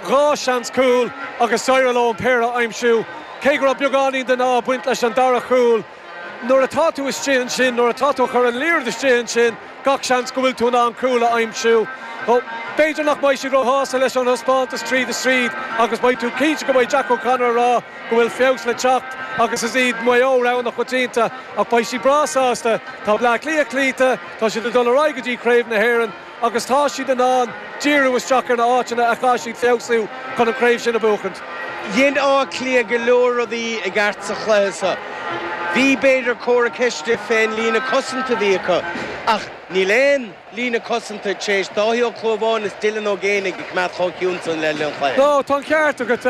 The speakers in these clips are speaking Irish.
dhá seans cúl agus d'éirigh leo an péire a aimsiú, cé go raibh beagáinín den ádh ag baint leis an dara chúl. Nuair atá tú istigh ansin, nuair atá tú ag cur an liathróid istigh ansin, gach seans go bhfuil tú in ann cúl a aimsiú. B'fhéidir nach mbeidh siad róshásta leis an dtaispeántas tríd is tríd agus beidh tú cinnte go mbeidh Jack O'Connor ag rá go bhfuil feabhas le teacht agus is iad Maigh Eo rogha na coitianta ach beidh siad breá sásta. Tá Bleá Cliath cloíte, tá siad ag dul ar aghaidh go dtí Craobh na hÉireann. agus tá siad in ann díriú isteach ar na áiteanna a chaithfidh siad feabhsú chun an craobh sin a bhuachaint. Dhein Áth Cliath go leor rudaí i gceart sa chluiche seo. Bhí, b'fhéidir, comhartha ceiste fén líne cosanta a bhí acu, ach níl aon líne cosanta tar éis Dáithí Ó Cluamháin is Dylan Ó Géanaigh a choimeád chomh ciúin san le linn an chluiche. No, tá an ceart agat.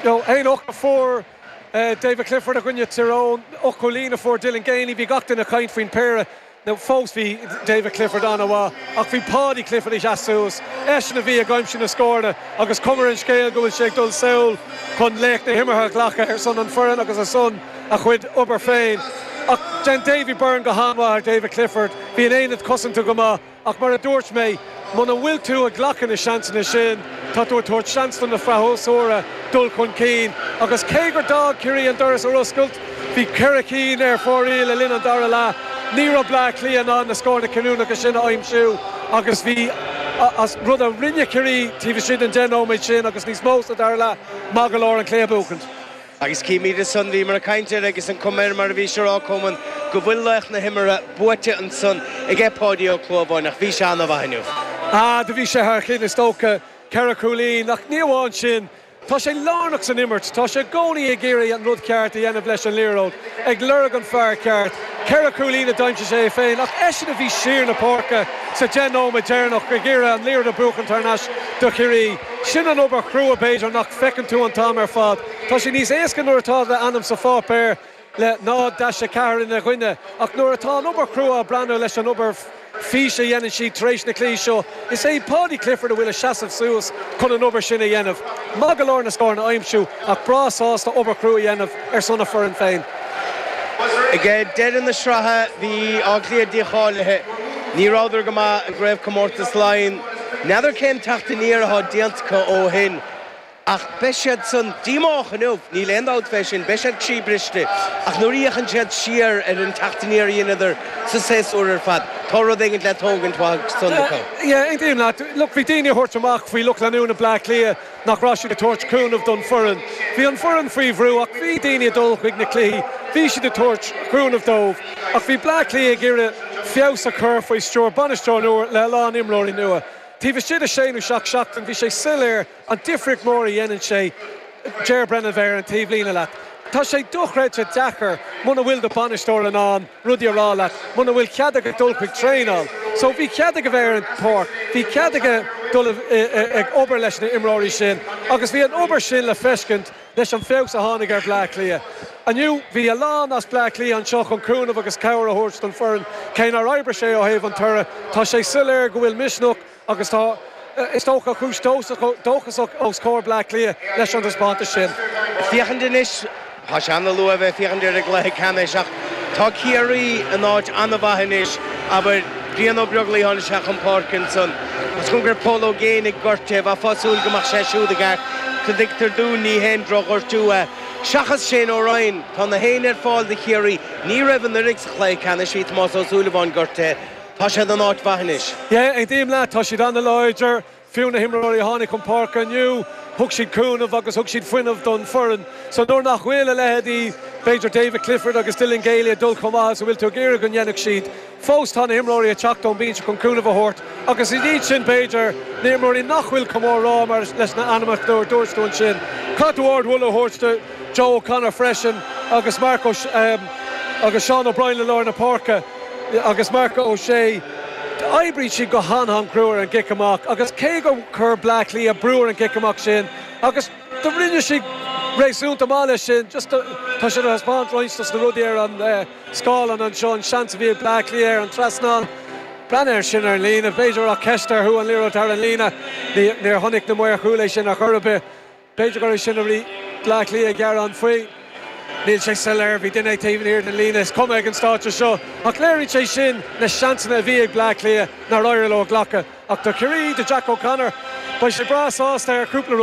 Aon ocht a fuair David Clifford i gcoinne Tyrone, ocht gcúilín a fuair Dylan Geaney, bhí gach duine ag caint faoin péire. No, fós bhí David Clifford an-mhaith ach bhí Paudie Clifford ag teacht suas, eisean a bhí ag aimsiú na scóranna agus cloisfimid an scéal go bhfuil sé ag dul sall chun laoch na himeartha a ghlacadh ar son an foireann agus ar son a chuid obair féin ach dhéan Davy Byrne go han-mhaith ar David Clifford. Bhí an aonad cosanta go maith ach mar a dúirt mé, Muna bhfuil tú ag glacadh na seansanna sin, tá tú ag tabhairt seans do na freasúra dul chun cinn agus cé gur d'fhág Ciarraí an doras ar oscailt, bhí ceithre cinn ar fóraoil le linn an dara leath, ní raibh Bleá Cliath in ann na scóranna cinniúnacha sin a aimsiú agus bhí rud a rinne Ciarraí taobh istigh den deich nóiméad sin agus níos mó sa dara leath maith go leor an cluiche a bhuachaint. Agus gabh mo leithscéal bhíomar ag caint air agus an comer mar a bhís a rá go mbeadh go bhfuil laoch na himeartha buaite ansan aige Páidí Ó Clúmháin ach bhí sé an-mhaith inniu. Ah do bhí sé thar cinn is dócha. Ceithre chúilín. Ach ní amháin sin. Tá sé lárnach san imirt. Tá sé i gcónaí ag iarraidh an rud ceart a dhéanamh leis an liathróid. ag lorg an fear ceart. Ceithre cúilín a d'aimsigh sé é féin ach eisean a bhí siar na páirce sa deich nóiméad deireanach ag iarraidh an liathróid a bhuachan tar nais do Chiarraí. Sin an obair chrua b'fhéidir nach bhfeiceann tú an t-am ar fad. Tá sé níos éasca nuair atá do ainm sa pháipéar le 0-4 ina gcoinne ach nuair atá an obair chrua ag breathnú leis an obair fís a dhéanann siad tar éis na cluichí seo. Is é Paudie Clifford a bhfuil ag seasamh suas chun an obair sin a dhéanamh. Maith go leor na scóranna a aimsiú ach breá sásta obair chrua a dhéanamh ar son a foireann féin. Ag deireadh na sraithe bhí Áth Cliath dícháilithe. Ní rabhadar go maith i gCraobhchomórtas Laighean. N'fheadar cén teacht aniar athá déanta acu ó shin. Ach beidh siad an-díomách inniu, níl aon dabht fé sin, beidh siad croíbhriste, ach nuair a fhéachann siad siar ar an teacht aniar a dheineadar sa séasúr ar fad, tá rud éigint le tógaint uaidh san acu. Yeah, aontaím leat. Look, bhí daoine ag tabhairt amach faoi lucht leanúna Bleá Cliath nach raibh siad ag tabhairt cúnamh don foireann. Bhí an foireann faoi bhrú ach bhí daoine ag dul chuig na cluichí, bhí siad ag tabhairt cúnamh dóibh. Ach bhí Bleá Cliath ag iarraidh feabhas a chur faoi stiúir bainisteoir nua le a lán imreoirí nua. Taobh istigh de sé nó seacht seachtain bhí sé soiléir, An difríocht mhór a dhéanann sé, Ger Brennan a bheith ar an taobhlíne leat. Tá sé dochreidte deacair muna bhfuil do bhainisteoir in ann rudaí a rá leat, muna bhfuil cead aige dul chuig traenáil. So bhí cead aige bheith ar an pháirc, bhí cead aige dul ag obair leis na imreoirí sin agus bhí an obair sin le feiscint leis an feabhas a tháinig ar Bhleá Cliath. Inniu bhí a lán as Bleá Cliath anseo chun cúnamh agus cabhair a thabhairt don foireann. Cé nár oibrigh sé ó thaobh an toradh, tá sé soiléir go bhfuil misneach, Agus tá, is dócha, cúis dóchasach os comhair Bleá Cliath leis an taispeántas sin. Ag féachaint anois, tá sé an-luath a bheith ag féachaint ar an gcluiche ceannais ach tá Ciarraí in áit an-mhaith anois, abair, Brian Ó Beaglaoi tháinig sé chun páirce ansan, agus cé go raibh Paul Ó Géibheannaigh gortaithe, bheifeá ag súil go mbeadh sé siúd i gceart, tuigtear dúinn, ní haon drochghortú é. Seachas Shane Ryan, tá gach éinne ar fáil do Chiarraí, ní raibh anuraidh sa chluiche ceannais, bhí Tomás Ó Súilleabháin gortaithe, Tá siad in áit mhaith anois. Yeah, aontaím leat, tá siad an-láidir, fiú na himreoirí a tháinig chun páirce inniu, thug siad cúnamh agus thug siad fuinneamh don foireann. So nuair nach bhfuil a leithéidí b'fhéidir David Clifford agus Dylan Geaney ag dul chomh maith is a bhfuil tú ag iarraidh go ndéanfadh siad, fós tá na himreoirí ag teacht ón bhinse chun cúnamh a thabhairt agus ina dhiaidh sin b'fhéidir na imreoirí nach bhfuil chomh mór le rá mar leis na ainmneacha a dúirt tú ansin, caithfidh tú ardmholadh a thabhairt do Joe O'Connor freisin agus Mark O'Shea agus Seán O'Brien i lár na páirce. agus Mark O'Shea, d'oibrigh siad go han-an chrua ar an gcic amach agus cé gur chuir Bleá Cliath brú ar an gcic amach sin agus do rinne siad réasúnta maith leis sin, just ag taispeáint roinnt dos na rudaí ar an scáileán anseo, an seans a bhí ag Bleá Cliath ar an trasnán. Breathnaigh ar sin ar an líne. B'fhéidir ceist an raibh an liathróid thar an líne. Níor chonaic na maoir chúil é sin ar chor ar bith. B'fhéidir gurbh é sin a bhí Bleá Cliath ag gearán faoi. Níl sé soiléir. Bhí duine taobh thiar den líne is cuma ag an stáitse seo. Ach léiríonn sé sin na seansanna a bhí ag Bleá Cliath nár éirigh leo a ghlacadh. Ach do Chiarraí, do Jack O'Connor, beidh sé breá sásta ar chúpla rud.